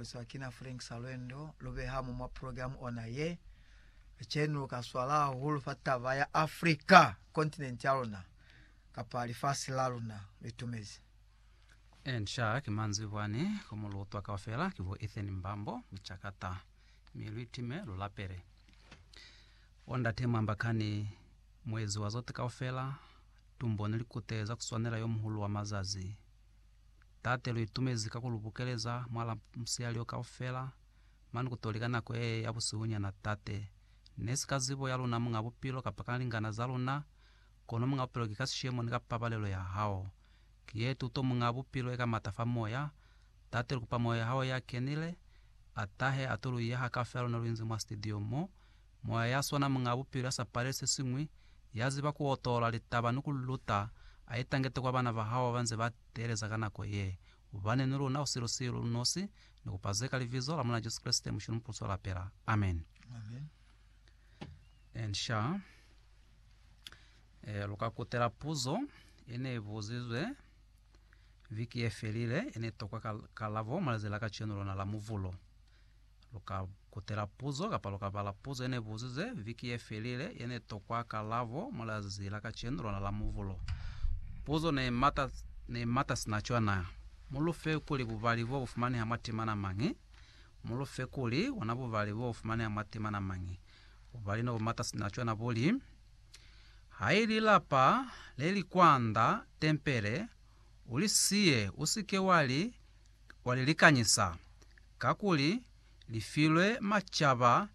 Luzwa kina Frank Salwendo lubeha mo mwa program ona ye ceni luka swala hahulu fa taba ya Africa continent ya luna kapa lifasi la luna litumezi. And sha ki manzwi bwani ku mu lutwa kaufela ki bo Ethan Mbambo Muchakata mi lu itime lu lapele. Bo ndate mwamba kani muezi wa zote kaufela tumbo ni likute za kuswanela yo muhulu wa mazazi Tate, lu itumezi ka ku lu bukeleza mwala musiyali o kaufela, mane ku toli ka nako yee ya busihunyana, Tate. Ne si ka zibo ya luna, Muñ'a Bupilo, kapa ka lingana za luna, kono, Muñ'a Bupilo, ki ka sishemo ni ka pabalelo ya Hao. Ki ye tuto, Muñ'a Bupilo, e ka mata fa Moya. Tate, lu kupa Moya ya Hao ya kenile, a tahe, a to lu yeha kaufela luna lu inzi mwa sitidio mo, Moya ya swana Muñ'a Bupilo ya sa paleli se siñwi, ya ziba ku otola litaba ni ku li luta, a i tangete kwa bana ba hao ba ba nze ba teeleza ka nako ye. Ubane ni luna usilu-silu, lu nosi, ni kupa ze ka Libizo la Mulena Jesu Kreste, Mushulu Mupusu wa lapela. Amen. And sha eh, lu ka kutela puzo ye ne i buzizwe viki ye felile, ye ne tokwa ka, kalabo mwa lize la kacenu lona la Muvulo. Lu ka kutela puzo kapa lu ka bala puzo ye ne buzize viki ye felile ye ne tokwa kalabo mwa lizazi la kacenu lona la Muvulo. Puzo ne i mata, ne i mata sina cwana. Mu lu fe kuli bubali bo bu fumaneha mwa timana mañi? Mu lu fe kuli bona bubali bo bu fumaneha mwa timana mañi? Bubali no bu mata sina cwana bu li, Ha i li lapa le li kwanda tempele, u li siye, u si ke wa li wa li likanyisa, kakuli li filwe macaba,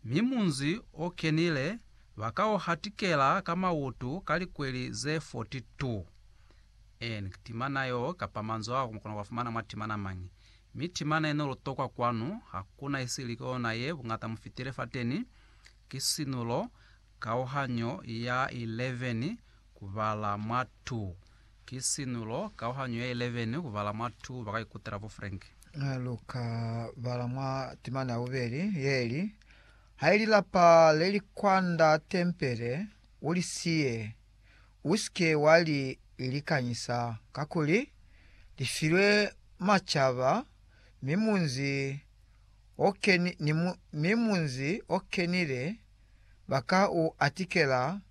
mi munzi o kenile ba ka u hatikela ka mautu ka likweli ze forty-two. N, Timana yo, kapa manzwi ao, mu kona ku a fumana mwa timana mañi? Mi timana ye no lu tokwa kwanu, ha ku na isili ki ona ye buñata mu fitile fateni, ki sinulo, kauhanyo ya 11, ku bala mwa two. Ki sinulo, kauhanyo ya 11, kubala mwa 2 baka ikutela bo Frank. Luka bala mwa timana ya bubeli yeli, Hai lilapa leli kwanda tempele ulisiye, usike wa li likanyisa, kakuli lifilwe macaba, mi munzi okenile baka u atikela,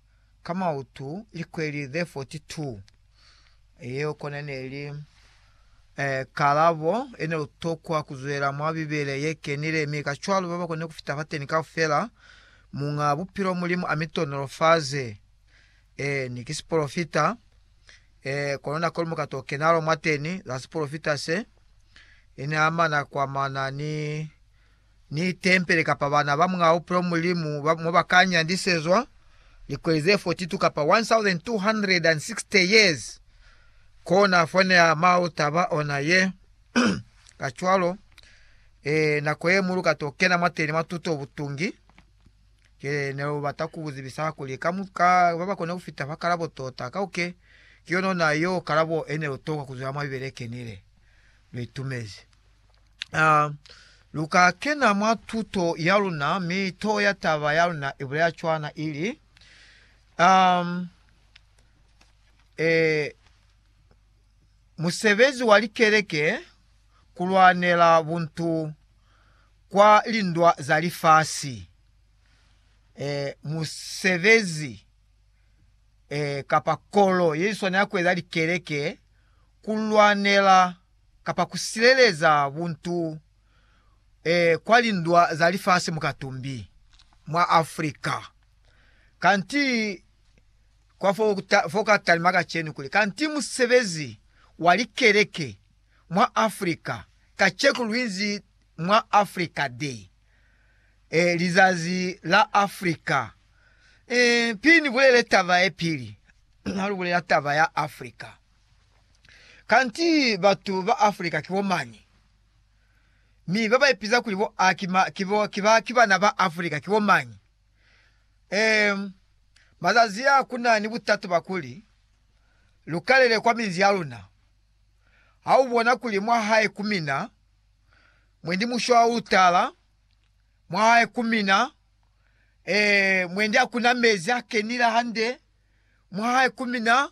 ka mautu likweli ze 42. Yeo kona ne li e, kalabo ye ne lu tokwa ku zwela mwa Bibele ye kenile, mi kacwalo ba ba kone ku fita fateni kaufela. Muñ'a Bupilo Mulimu a mi tonolofaze. Ee, ni ki sipolofita. Ee, kono nako lu muka to kenalo mwateni, za sipolofita se, i ne amana kwa mana ni ni tempele kapa bana ba muñaa bupilo Mulimu ba mo ba ka nyandisezwa likweli ze 42 kapa 1,260 years, kona fo ne a mau taba ona ye. Kacwalo, ee, nako ye mu lu ka to kena mwateni mwa tuto butungi, ke ne lu bata ku buzibisa kuli ka, ka ba ba kone ku fita fa kalabo tota, kauke ki yona ona yo kalabo e ne lu tokwa ku zwela mwa Bibele e kenile. Lu itumezi. A lu ka kena mwa tuto ya luna, mi toho ya taba ya luna i bulela cwana, i li, um, eh, Musebezi wa Likeleke ku lwanela buntu kwa lindwa za lifasi. Eh, musebezi eh, kapa kolo ye swanela ku eza likeleke ku lwanela kapa ku sileleza buntu e kwa lindwa za lifasi mukatumbi mwa Africa. Kanti kwa fo fo ka talima kacenu kuli kanti musebezi wa likeleke mwa Africa kaceku luinzi mwa Africa Day, e lizazi la Africa. E, pili ni bulele taba ye pili, ha lu bulela taba ya Africa. Kanti batu ba Africa ki bo mañi? Mi ba ba ipiza kuli bo a ki ma, ki bo, ki ba, ki bana ba Africa ki bo mañi? Eem, mazazi a ku na ni butatu ba kuli lu kalele kwa minzi ya luna. Ha u bona kuli mwa hae ku mina, mwendi mushwa u tala, mwa hae ku mina, ee, mwendi ha ku na mezi a kenile hande, mwa hae ku mina,